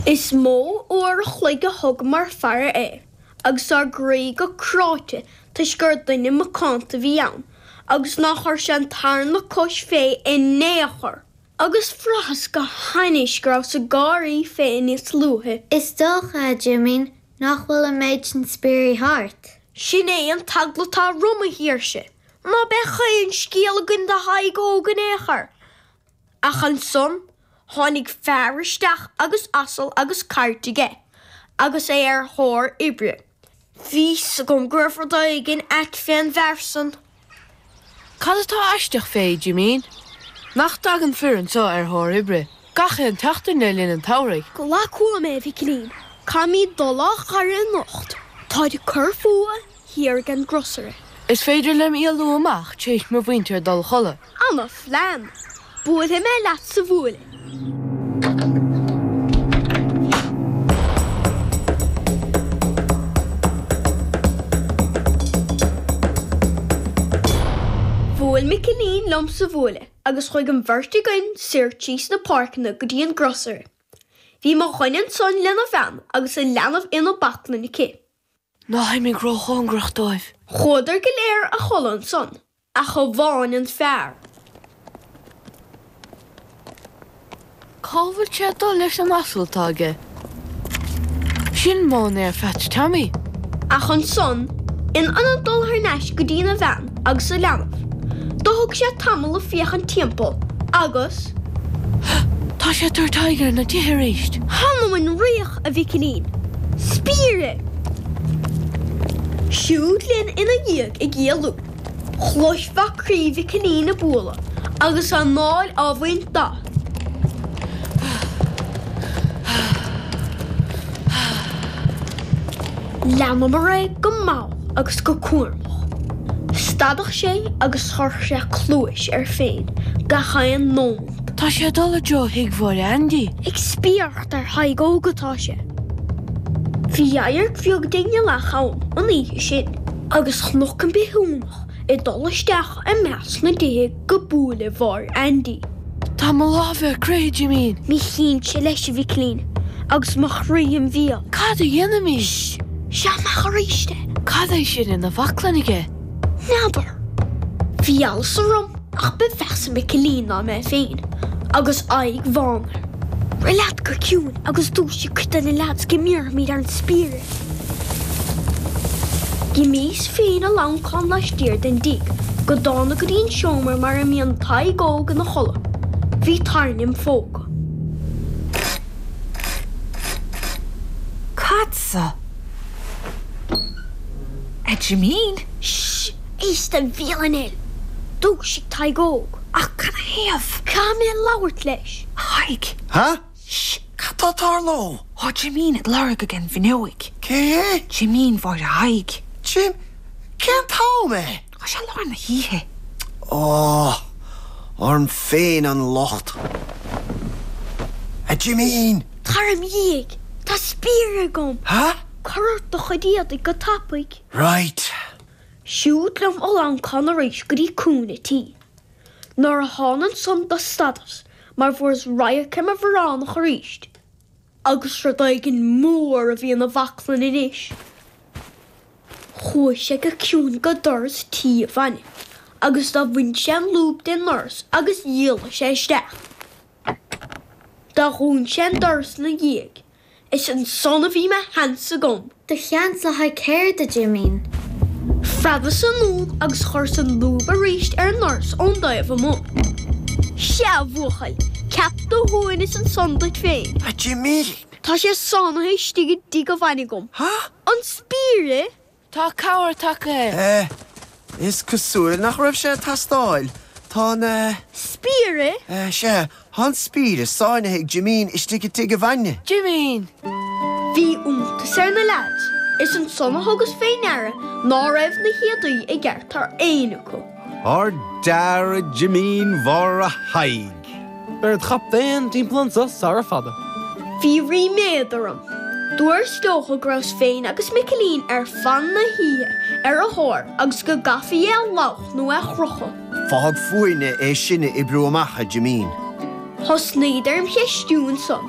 Is mó uair a chloig a thugamar ag faire air agus ár gcroí go cráite toisc gur duine macánta a bhí ann agus nár chuir sé an tarna cois fé i n-aon chor. Agus bhraitheas go hainnis go rabhas ag gáirí fé níos luaithe. Is dócha, a Jimín, nach bhfuil an méid sin spiairí thart? Sin é an t-eagla atá orm, a Shaoirse. Ná beidh aon scéal againn do Thadhg Óg in aon chor. Ach ansan tháinig fear isteach agus asal agus cairt aige agus é ar thóir oibre. Bhí a fhios agam go raibh rud éigin ait fén bhfear san. Cad atá aisteach fé, Jimín? Nach dtagann fir anso ar thóir oibre gach aon tseachtain le linn an tsamhraidh? Glac uaim é, a Mhicilín. Caithfimid dul á fhaire anocht. Táid ag cur fúthu. thiar ag an gcrosaire. Is féidir liom éalú amach tréis mo mhuintir dul a chodladh. Ana phlean! Buailfidh mé leat sa bhuaile. Bhuail Micilín liom sa bhuaile agus chuaigh an bheirt againn soir tríd na páirceanna go dtí an gcrosaire. Bhí mo dhuine ansan lena bhean agus a leanbh ina baclainn aici. Ná himigh róchóngarach dóibh. Chuadar go léir a chodladh ansan ach amháin an fear. Cá bhfuil sé ag dul leis an asal atá aige? Sin Móinéar Pheaits Tommy. Ach ansan, in ionad dul thar n-ais go dtína bhean agus a leanbh, do thug sé tamall ag féachaint timpeall agus. Tá sé ag tabhairt aghaidh ar na tithe aríst. Th'anam 'on riach! a Mhicilín, spiaire. Siúd linn ina dhiaidh ag éalú. Chloisfeá croí Mhicilín ag bualadh agus a anáil á bhaint de. Há! Há! Há! Há! Leanamar é go mall agus go cúramach. Stadadh sé agus chuireadh sé cluais air féin gach aon nóiméad. Tá sé ag dul i dtreo thigh Mháire Aindí. Ag spiaire. ar Thadhg Óg atá sé. Bhí adharc bheag den ghealach ann an oíche sin agus chonac an bithiúnach ag dul isteach i measc na dtithe go buaile Mháire Aindí. Tá mo lámha ar crith, a Jimín. Mo chinnse leis, a Mhicilín, agus mo chroí im bhéal. Cad a dhéanfaimid? Seo amach aríst é. Cad é sin ina bhaclainn aige? N'fheadar. Bhí allas orm ach ba mheasa Micilín ná mé féin agus aghaidh bhán air. Rith leat go ciúin agus dúisigh cuid de na leaids go mbéarfaimid ar an spiaire. D'imíos féin ag lamhncán laistiar den dtigh go dána go dtí an seomra mar a mbíonn Tadhg Óg ina chodladh. Bhí tairne im phóca. Cad sa. A Jimín! Sh! Éist do bhéal anois! Dúisigh Tadhg Óg! Ach cad ina thaobh? Caithfidh mé labhairt leis! Thaidhg! Ha? Sh! Cad tá ag tarlú? Tá Jimín ad lorg ag an bhfinneoig. Cé hé? Jimín Mháire Thaidhg. Jim? Cén t-am é? Tá sé i lár na hoíche. Ó! Orm féin an locht! A Jimín! Tar im dhiaidh! Tá spiaire agam! Há? Cuir ort do chuid éadaigh go tapaidh! Right! Siúd liom ag lamhncán arís go dtí cúinne a' tí. Nuair a thána ansan do stadas mar fuaireas radharc ar mo bhioránach arís, agus rud éigin mór a bhí ina bhaclainn anois. Chuaidh sé go ciúin go doras tí a bhainne agus do bhain sé an lúb de'n ndoras agus d'éalaigh sé isteach. Do dhún sé an doras in a dhiaidh. Is ansan a bhí mo sheans agam. Do sheans le haghaidh céard a Jimín. Phreabas anonn agus chuireas an lúb arís ar an ndoras ó'n dtaobh amuigh. Seadh, a bhuachaill, ceap do shuaimhneas ansan duit féin. A Jimín! Tá sé sáinnithe istigh i dtigh a bhainne agam. an spiaire. Tá cabhair tagtha. É, Is cosúil nach raibh sé ag teastáil. Tá an. spiaire. É, Sea, tá an spiaire sáinnithe ag Jimín istigh i dtigh a bhainne. Jimín. Bhí iontas ar na leaids. Is ansan a thugas fé ndeara ná raibh na héadaí i gceart ar éinne acu. Ard-fhear a Jimín Mháire Thaidhg. Beir id chaptaen timpeall anso sara fada. Bhí ríméad orm. Dúrt leotha go rabhas féin agus Micilín ar fan na hoíche ar a thóir agus go gcaithfí é a lámhach nó é a chrochadh. Fág fúinne é sin a oibriú amach, a Jimín. Thosnaíodar im cheistiú ansan.